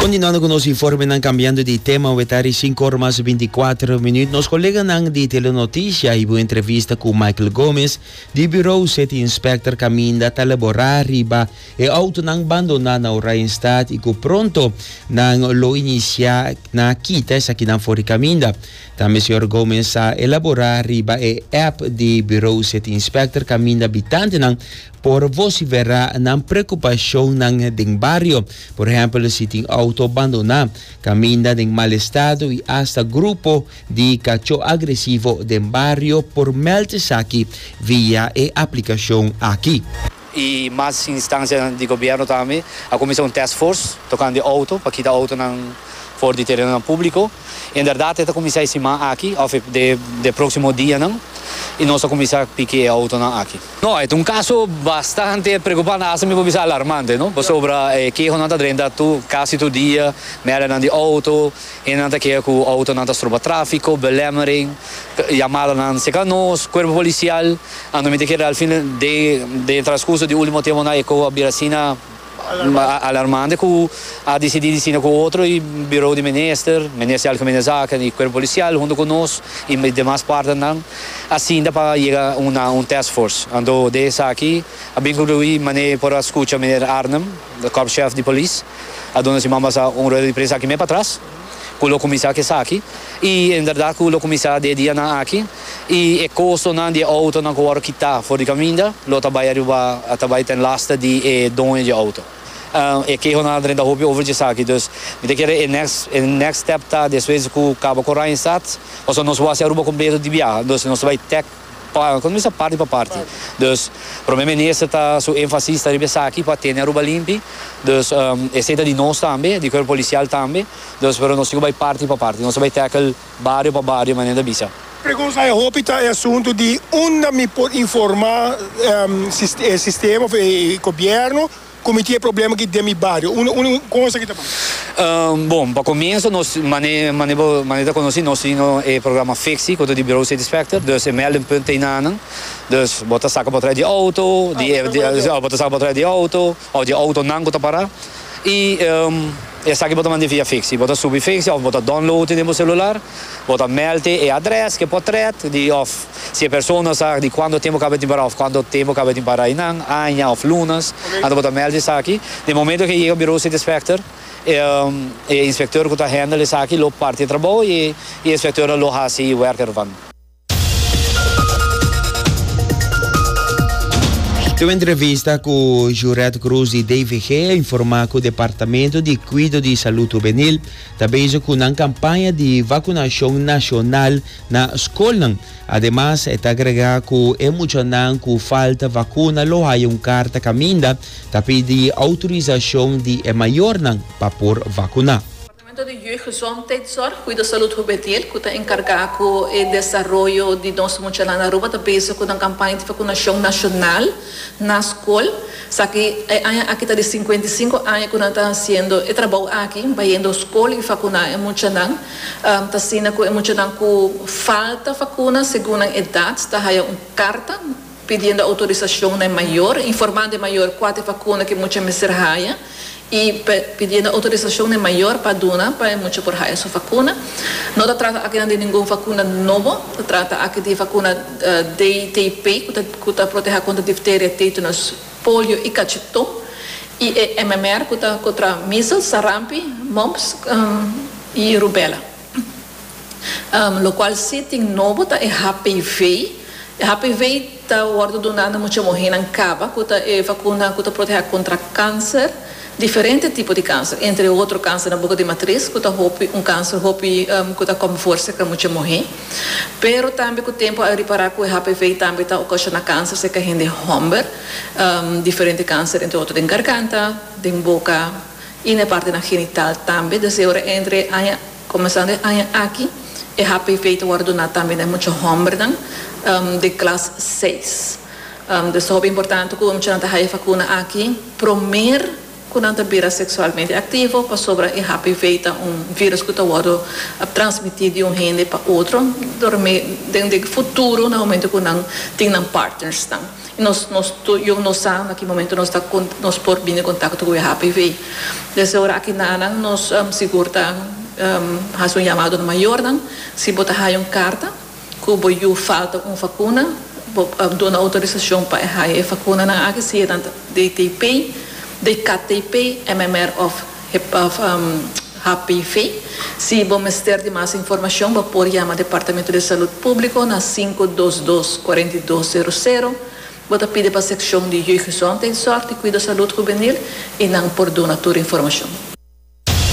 Continuando cu nos informenan cambiando di tema we ta ricin cor mas binticuatro minuut nos coleganan di Telenoticia hibo un entrevista cu Michael Gomez di Bureau City Inspector caminda ta labora riba e autonan bandona na Oranjestad y cu pronto nan lo inicia na kita esakinan for di caminda. Tambe señor Gomez a elabora riba e app di Bureau City Inspector caminda bitantenan Por vociferá nan preocupacionnan den bario, por ehempel si tin auto bandoná, caminda den mal estado y hasta grupo di cacho agresivo den bario por meld esaki via e aplicacion aki. Y mas instancianan di gobierno tambe a cuminsa un task force tocante auto pa kita autonan for di terenonan publico. En berdad e ta cuminsa e siman aki of e proximo dianan y nos ta cuminsa piki e autonan aki. No, e ta un kaso bastante preokupante, asta mi por bisa alarmante, no. Pasobra e kehonan ta drenta tur, kasi tur dia, mèdianan di outo, hendenan ta keha ku outonan ta stropa tráfiko, belemmering, yamadanan seka nos, kuerpo polisial, anto mi ta kere al fin den den e transkurso di último tiemponan e koho a bira asina. Alarmante cu a dicidi di sina cu otro y Bureau di Minister, Minister di Algemene Zaken y Cuerpo Policial hunto cu nos y demas partnernan a sinta pa yega na un task force. Anto den esaki a bin conclui mane por a scucha Meneer Arnhem, Korpschef di Polis, a duna si man basa un rueda di prensa aki mes patras. Cu lo cuminsa cu esaki, y en verdad cu lo cuminsa di e dianan aki, y e costonan di e autonan cu wòrdu kita for di caminda, lo ta bai aruba, ta bai ten lasta di e doño di e auto. E kehonan a drenta hopi over djesaki, dus mi ta kere e next, e next step ta despues cu caba cu Ryan Stad, pasobra nos wou hasi Aruba completo di biaha, entonces nos ta bai tèk Paga con mester parti pa parti. Dus Prome Minister ta su enfasis ta riba esaki pa tene Aruba limpi. Dus esey ta di nos tambe, di Cuerpo Policial tambe. Dus pero nos tin cu bay parti pa parti. Nos a bay tackle bario pa bario manera ta bisa. Pregunta e hopi ta e asunto di unda mi por informa e sistema of e Gobierno. cu mi tin e problema aki den mi bario? Un, un, un conseho aki ta bon. Um, bon, pa comienzo, nos, mane, mane, bo, mane ta conoci, nos tin e programa fixi, cu ta di Bureau Satisfactor, dus e meldingpunt ta na nan, dus bo ta saca patraya di auto, di, ah, di, di, bo ta saca patraya di auto, of di autonan cu ta para, y, um, esaki bo ta mandi via fixi, bo ta subi fixi of bo ta download e den bo celular, bo ta meld e adres cu e por tret, di, of. Si e persona sa di cuanto tempo caba tin para of cuanto tempo caba tin para eynan, aña of lunas, anto bo ta meld esaki. Den momento cu e yega Bureau City Inspector e e inspector cu ta handle esaki lo parti e trabou y e inspector a lo haci e werk ervan. Tin un entrevista cu Juret Cruz di DVG a informa cu Departamento di Cuido di Salud Hubenil ta bezig cu nan campaña di vacunacion nacional Na skolnan, ademas e ta agregá ku e muchanan ku falta vakuna lo haya un karta kaminda ta pidi outorisashon di e mayornan pa por vakuná. Departamento di Jeugdgezondheidszorg, Cuida Salud Jubetil, ku ta enkargá ku e desaroyo di nos muchanan na Aruba ta bezig ku nan kampaña di vakunashon nashonal na skol. Esaki e aña aki ta di sinkuenta i sinku aña ku nan ta hasiendo e trabou aki, bayendo skol i vakuná e muchanan. Asina cu e muchanan cu falta facuna segun nan edad ta haya un carta pidiendo autorisacion na e mayor, informando e mayor cua ta e facuna cu e mucha mester haya y pidiendo autorisacion na e mayor pa duna pa e mucha por haya su facuna. No ta trata akinan di ningun facuna nobo, ta trata aki di e facuna DTP cu ta proteha contra difteria, tetanus. polio y cachetón, y e MMR cu ta contra measles, sarampi, mumps y rubella. Locual si tin nobo ta e HPV. E HPV ta wordo duna na mucha muhernan caba cu ta e vacuna cu ta proteha contra cancer. Diferente tipo di kanser, entre otro kanser na boka di matris ku ta hopi un kanser hopi ku ta kòm fuersa ka mucha muhé, pero tambe ku tempu a ripará ku e HPV tambe ta okashona kanser serka hende hòmber, diferente kanser entre otro den garganta, den boka i na e partenan genital tambe, desde ora entre aña. Komensando e aña aki, e HPV ta wòrdu duná tambe na e mucha hòmbernan den klas seis. Pues ta hopi importante ku e muchanan ta haña e vakuna aki promé ku nan ta bira seksualmente aktivo, pasobra e HPV ta un vírùs ku ta wòrdu transmití di un hende pa otro, dor den futuro na momento ku nan tin nan partnersnan. Nos nos tur yu nos sa na ki momento nos ta con nos por bini contacto cu e HPV. Desde e ora aki nanan nos sigur ta haci un llamado na mayornan si bo ta haya un carta cu bo yu falta un vacuna bo duna autorisacion pa e haya e vacunanan aki sea nan ta DTP, DKTP, MMR of. HPV. Si bo mester di mas informashon bo por yama Departamentu di Salud Públiko na sinku dos dos, kuarenta i dos seru seru. Bo ta pide pa sekshon di Jeugdgezondheidszorg di Kuido Salud Hubenil i nan por duna tur informashon.